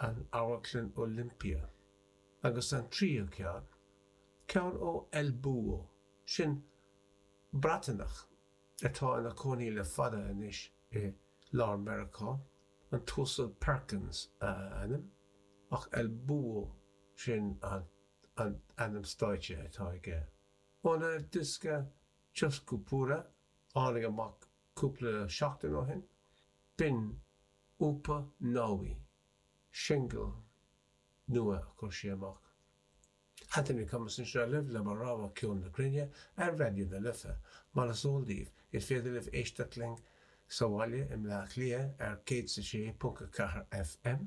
an Amharclann Olympia, agus an tríú ceann, ceann ó El Búho, sin Breatanach atá ina cónaí le fada anois i lár Meiriceá, an tUasal Perkins a ainm, ach El Búho sin an t-ainm stáitse atá aige. Óna dhiosca Cioscupura tháinig amach Cúpla seachtain ó shin, b'in Upa Nawi, singil nua a chuir sí amach. Anthony Cummins anseo libh le mo rogha ceol na cruinne ar Raidió na Life, mar is eol daoibh. Is féidir libh éisteacht linn sa bhaile i mBleá Cliath ar 106.4 FM,